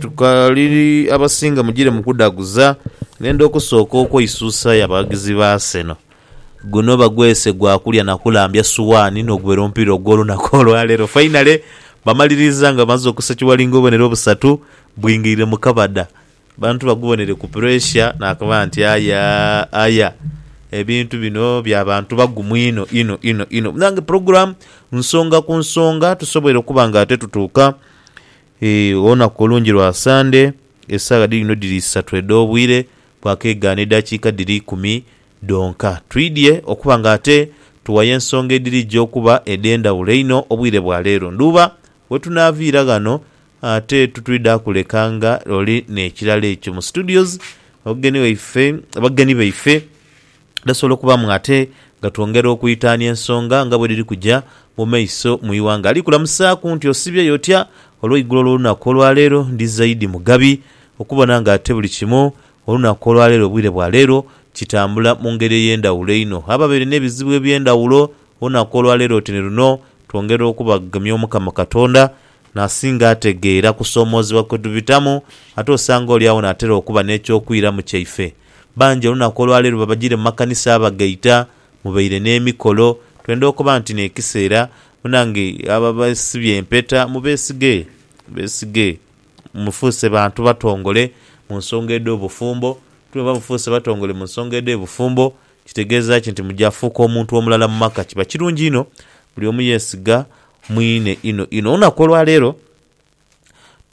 tukaliri abasinga mugire mu kudhaguza ng'enda okusooka okweisusa y'abaghagizi ba Arsenal. Guno bagwese gwa kulya na kulambya suwaani n'ogubera omupiira ogw'olunaku olwaleero. Fainale bamaliriza nga bamaze okusekiwala ng'obubonero obusatu bwingiire mu kabada. Abantu bagubonere ku puresha nakoba nti aya aya ebintu bino bya bantu bagumu inho inho inho inho. Munange pulogulaamu nsonga ku nsonga tusoboire okuba nga ate tutuuka Eeh olunaku olungi lwa Sande, esaawa dhiidhino dhiri isatu edh'obwire bwakeeghana edhakiika dhiri ikumi dhonka. Twidhie okuba nga ate tuwayo ensonga edhirija okuba edh'endhawulo einho obwire bwa leero. Ndhuba wetunaaviira ghano ate titwidha kuleka nga oli n'ekirala ekyo mu studios. Abageni waife, abageni baife. Dhasobola okubaamu ate nga twongera okwitaania ensonga nga bwe dhiri kuja mu maiso mu ighanga. Ali kulamusaaku nti osibyeyo otya? Olweigulo olw'olunaku olwaleero ndi zaidi mugabi okubona nga ate buli kimu olunaku olwaleero obwire bwa leero kitambula mu ngeri ey'endhawulo einho. Ababaire n'ebizibu eby'endhawulo olunaku olwaleero oti ni luno twongera okubagemya Omukama Katonda n'asinga ategeera kusoomoozebwa kwe tubitamu ate osanga oli agho n'atera okuba n'eky'okwiramu kyaife. Bangi olunaku olwaleero babajire mu makanisa abagaita, mubaire n'emikolo. Twenda okoba nti n'ekiseera munange abo abesibye empeta mubesige, mubesige. Mufuuse bantu batongole mu nsonga edh'obufumbo. Ti bwemba mufuuse batongole mu nsonga edh'ebufumbo kitegeeza ki nti muja fuuka omuntu omulala mu maka? Kiba kirungi inho buli omu yesiga mwine inho inho. Olunaku olwaleero.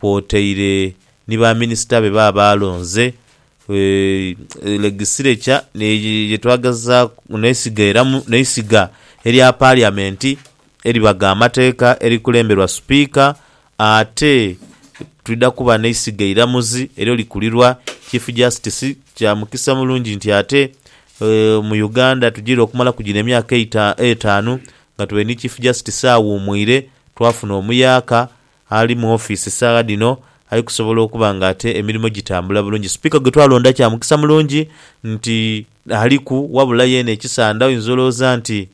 kwotaire ni ba minisita be baba balonze, Legisireca ye twagezaaku n'eisiga era n'eisiga erya Paliamenti eribagha amateeka erikulemberwa Sipiika ate twidha kuba n'eisiga eiramuzi eryo likulirwa Chief Justice. Kya mukisa mulungi nti ate mu Uganda tugiire okumalaku gino emyaka etaanu nga tuli ni Chief Justice aghumwire, twafuna omuyaaka Ali mu ofiisi saagha dhino ali kusobola okuba nga ate emirimo gitambula bulungi. Sipiika gwe twalonda kya mukisa mulungi nti aliku wabula yeene ekisanda oyinza olowooza nti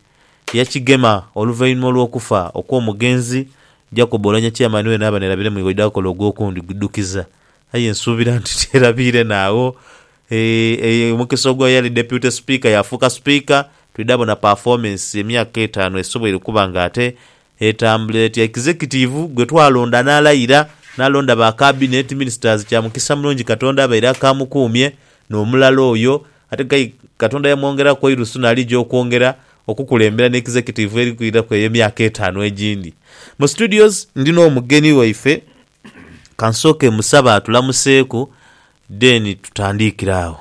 yakigema oluvainhuma olw'okufa okw'omugenzi Jacob Oulanyah Chairman weene aba nerabire mu ighoidha akola ogw'okundi gudhukiza aye nsuubira nti terabiire naagho eeh omukisa ogwa eyali Deputy Sipiika yaafuuka Sipiika twidha bona performance emyaka etaanu esoboire okuba nga ate Etambula etya Ekizekitiivu gwe twalonda n'alayira n'alonda ba Kabineeti, Minisitazi, kya mukisa mulungi Katonda abaire akaamukuumye n'omulala oyo ate k'aye Katonda yamwongeraku eirusu n'alija okwongera okukulembera n'Ekizekitiivu eri kwiraku eyo emyaka etaanu egindi. Mu Studios ndi n'omugeni waife, ka nsooke mmusabe atulamuseeku then tutandiikire agho.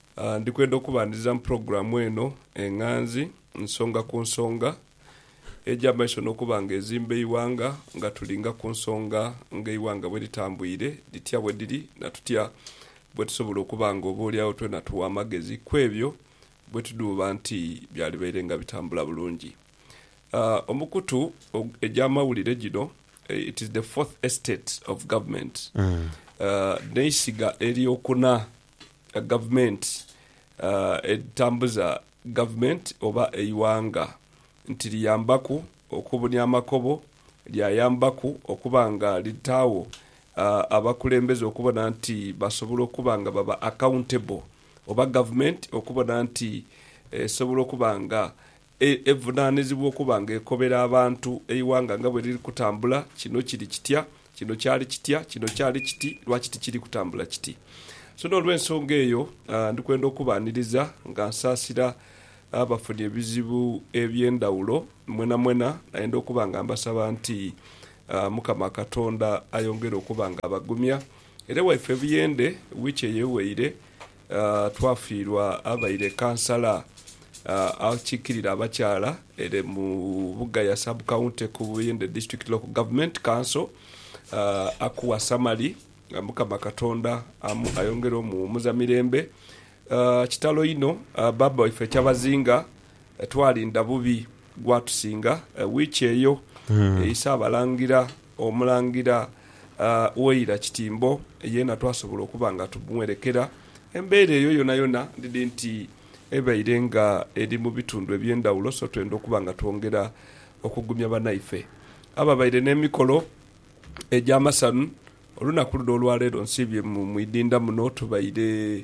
Ndi kwenda okubandhiriza mu pulogulaamu eno enghanzi nsonga ku nsonga eja maiso n'okuba nga ezimba eighanga nga tulinga ku nsonga nga eighanga bwe litambwire, dhitya bwe dhiri na tutya bwe tusobola okuba nga oboolyawo twena tugha amagezi ku ebyo bwe tudhuuba nti byalibaire nga bitambula bulungi. Omukutu egy'amawulire gino It is the Fourth Estate of Government, N'eisiga ery'okuna gavumenti edhitambuza gavumenti oba eighanga nti liyambaku okubunia amakobo, lyayambaku okuba nga litaagho abakulembeze okubona nti basobola okuba nga baba accountable oba gavumenti okubona nti esobola okuba nga Evunaanizibwa okuba nga ekobera abantu eighanga nga bwe liri kutambula. Kino kiri kitya? Kino kyali kitya? Kino kyali kiti? Lwaki tikiri kutambula kiti? So n'olw'ensonga eyo, ndi kwenda okubaaniriza nga nsaasira abafunye ebizibu eby'endhawulo mwenamwena. Nayenda okuba nga mbasaba nti Mukama Katonda ayongere okuba nga abagumya. Era waife Buyende wiiki eyeweire Twafiirwa abaire Kansala akiikirira abakyala ere mu Bugaya Sub County ku Buyende District Local Government Council, Akuwa Samali, Mukama Katonda ayongere omuwumuza mirembe. Kitalo inho baaba waife Kyabazinga twalinda bubi Gwatusinga wiiki eyo eisa abalangira Omulangira Waira Kitimbo yeena twasobola okuba nga tumwerekera. Embeera eyo yonayona ndidhi nti ebaire nga eri mu bitundu eby'endhawulo so twenda okuba nga twongera okugumya banaife ababaire n'emikolo egy'amasanhu. Olunaku luno olwaleero nsiibye mu idinda muno tubaire.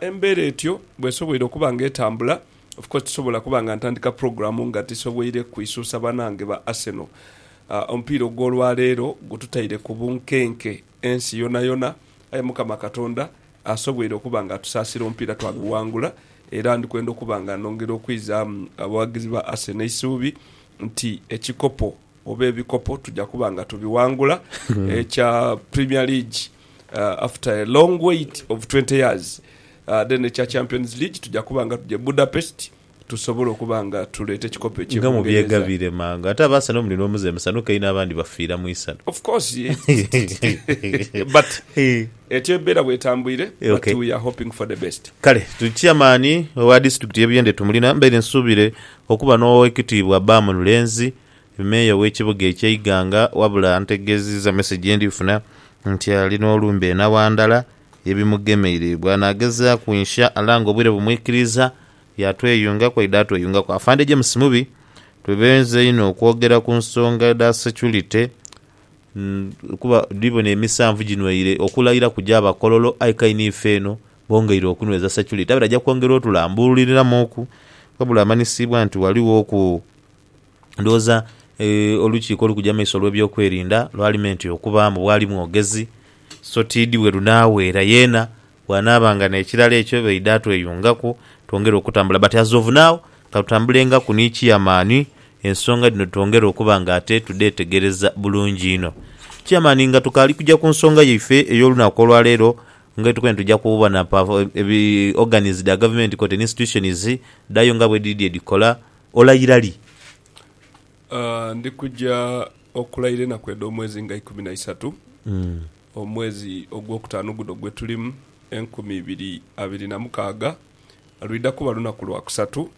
Embeera etyo bw'esoboire okuba nga etambula, of course tisobola kuba nga ntandika pulogulaamu nga tisoboire kwisuusa banaange ba Arsenal. Omupiira ogw'olwaleero gututaire ku bunkenke ensi yonayona, aye Mukama Katonda asoboire okuba nga atusaasira omupiira twaguwangula era ndi kwenda okuba nga nongera okwizaamu abawagizi ba Arsenal eisuubi nti ekikopo oba ebikopo tuja kuba nga tubiwangula. Ekya Premier League After a long wait of twenty years then ekya Champions League tuja kuba nga tuja e Budapest tusobole okuba nga tuleeta ekikopo ekye Nga Bungereza. mubyegabire mangu. Ate aba Arsenal muli n'omuze musanhuke inho abandi bafiira mu isanhu. Of course but etyo embeera bw'etambwire but Okay. we are hoping for the best. Kale tuli Chairman owa Disitulikiti y'e Buyende Tumulina mbaire nsuubire okuba n'Owekitiibwa Bam Lulenzi Meeya w'ekibuga ekya Iganga wabula antegeezizza message ye ndi funa nti ali n'olumbe e Nawandala ye bimugemeire. Bw'anaagezaaku insha Allah nga obwire bumwikiriiza yaatweyungaku aidha atweyungaku. Afande James Mubi, Twebenze inho okwogera ku nsonga edha security kuba ndi bona emisanvu ginweire okulayira kuja abakololo aye k'aino ife eno bongeire okunweza security abaire aja kwongera otulambululiriramuuku wabula amanyisiibwa nti ghalighoku. Ndhoghoza olukiiko olukugya mu maiso olw'ebyokwerinda lwalimenti okuba mbu bwali mwogezi so ti idi bwe lunaaweera. Yeena bw'anaaba nga n'ekirala ekyo baidha tweyungaku twongere okutambula but as of now ka tutambulengaku ni Chiamani ensonga dhino twongere okuba nga ate tudheetegereza bulungi inho. Chiamani nga tukaali kugya ku nsonga yaife ey'olunaku olwaleero nga bwe tukoine tugya kubona pa organs dha gavumenti koti ni institutions dhayo nga bwe dhidhi edhikola Olayira li? Ndi kuja okulayira enaku edh'omwezi nga ikumi na isatu, omwezi ogwokutaanu guno gwe tulimu, enkumi ibiri abiri na mukaaga. Lwidha kuba lunaku lwa kusatu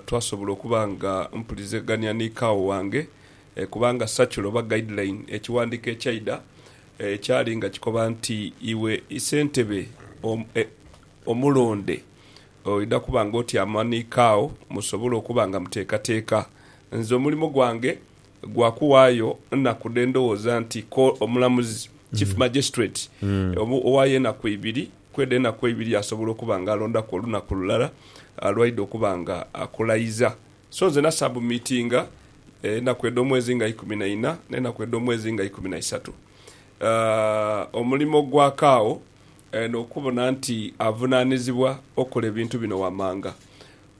twasobola okuba nga mpulizegania ni kaawo wange, kubanga circular oba guideline, ekiwandiiko ekyaidha ekyali nga kikoba nti iwe isentebe omulonde Oidha kuba ng'oti amaniiko agho musobole okuba nga muteekateeka. Nze omulimo gwange gwa kuwaayo nnaku dhe ndhoghoza nti ko omulamuzi, Chief Magistrate, owaayo enaku ibiri, kwedho enaku eibiri asobola okuba nga alondaku olunaku lulala lwaidha okuba nga akulayiza. So nze nasabumitinga enaku edh'omwezi nga ikumi na ina n'enaku edh'omwezi nga ikumi na isatu. Omulimo gwa kaagho n'okubona nti avunaanizibwa okola ebintu bino wamanga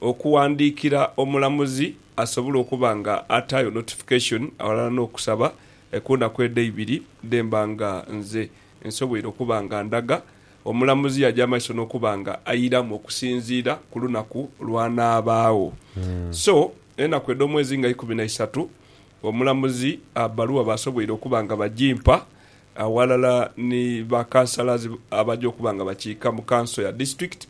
okuwandiikira omulamuzi asobola okuba nga ataayo notification aghalala n'okusaba ku naku edho eibiri dhemba nga nze nsoboire okuba nga ndaga omulamuzi yaja maiso n'okuba nga airamu okusinziira ku lunaku lw'anaabaagho. So enaku edh'omwezi nga ikumi na isatu omulamuzi bbaluwa baasoboire okuba nga bagimpa aghalala ni ba Councillors abaja okuba nga bakiika mu Council ya District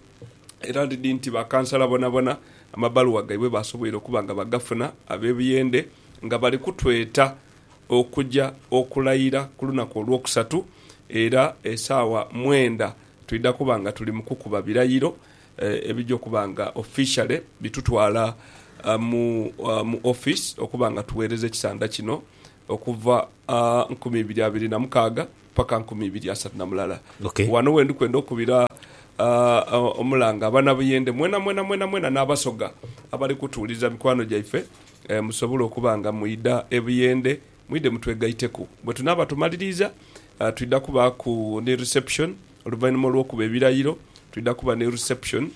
era ndidhi nti ba Councillor bonabona amabaluwa gaibwe basoboire okuba nga bagafuna abe Buyende nga bali kutweta okuja okulayira ku lunaku olwokusatu era esaawa mwenda twidha kuba nga tuli mu kukuba birayiro ebija okuba nga officially bitutwala mu Office okuba nga tughereza ekisandha kino Okuva a nkumi ibiri abiri na mukaaga paka nkumi ibiri asatu na mulala. Ok. Wano wendi kwenda okubira a omulanga abana Buyende mwena mwena mwena mwena na Basoga abali kutuwulirira mikwano gyaife e musobola okuba nga mwidha e Buyende mwidhe mutwegaiteku. Bwe tunaaba tumaliriiza a twidha kubaaku ni reception oluvainhuma olwokuba ebirayiro twidha kuba ni reception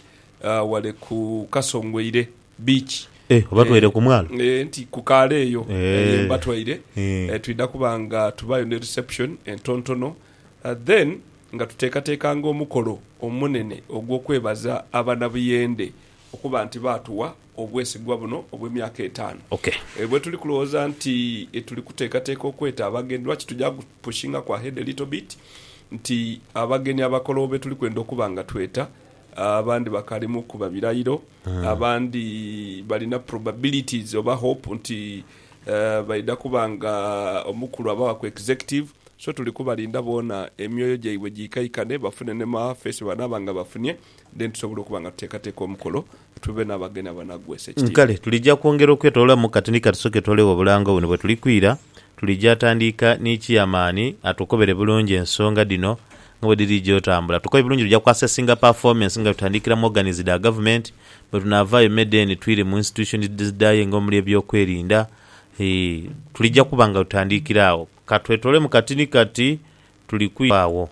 a wale ku Kasongweire. Beach. Eh, obatwaire ku mwalo? Eh, nti ku kaale eyo ye mbatwaire. Twidha kuba nga tubaayo ni reception entontono, then nga tuteekateekanga omukolo omunene ogw'okwebaza Abanabuyende okuba nti baatuwa obwesigwa buno obw'emyaka etaanu. Eh, bwetuli kulowooza nti tuli kuteekateeka okweta abagenyi, lwaki tuja ku pushingaku ahead a little bit nti abageni abakologho betuli kwenda okuba nga tweta, Abandi bakalimuku babirayiro, abandi balina probabilities oba hope nti baidha kuba nga omukulu abawa ku executive. So tuli kubalinda boona emyoyo gyaibwe giikaikane bafune ne ma face bebanaaba nga bafunye then tusobole okuba nga tuteekateeka omukolo tube n'abagenyi abanagwa esekitiibwa. Kale tulija kwongera okwetolola mu kati ni kati tusoke twoleghe obulango buno bwetulikwira. Tulija tandiika ni kiyamaani atukobere bulungi ensonga dhino nga bwe dhiriidha otambula. Tukoye bulungi luja kuassessinga performance nga tutandikira mu organies dha gavumenti, bwe tunaavaayo me then twire mu institutions edhidhayo nga omuli eby'okwerinda, ii, tulija kuba nga tutandikira agho. Ka twetoloolemu kati ni kati, tuli kwira agho.